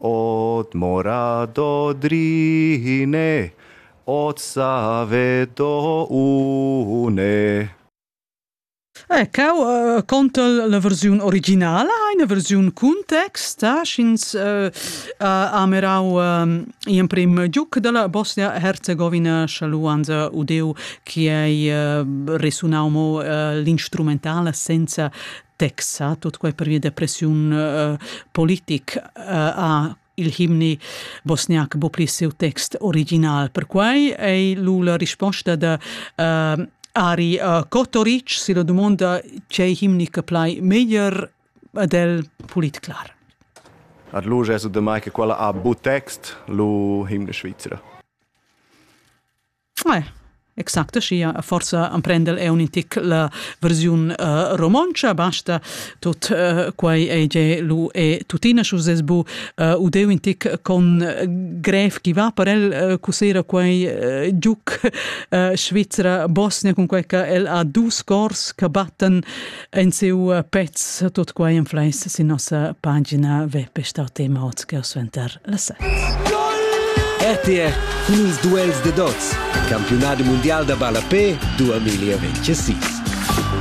Od mora do drine, od save do une. Ecco, uh, conta la versiun originala, eine versiun cun text, eh, sch'ins uh, uh, amerau uh, in prim giuc della Bosnia-Herzegovina schaluanza udeu, che ei uh, resunau mo uh, l'instrumentala senza Texas, tut quai pervia da pressiun uh, politic uh, ha il himni bosniac bo pli siu text original. Perquai ei lu la risposta da uh, Ari uh, Kotoric si la domanda c'è himni che plai meglier ad el pulit clar. Ad lu gesu de mai che quella ha bu text lu himne Svizzera. Ouais. Exact schia, forsa emprendel eu un tic la versiun uh, romontscha, basta tot uh, quai ei ge lu e tuttina schu ses bu uh, u deu un tic con grev chi va per el uh, cusera quai uh, giuc uh, Svizzera Bosnia cun quai che el ha dus cors che batten En siu pezz tut quai influenza sin nossa pagina web.rt suenter le set. RTR cun ils duels de dots, campionat mundial da ballapé 2026.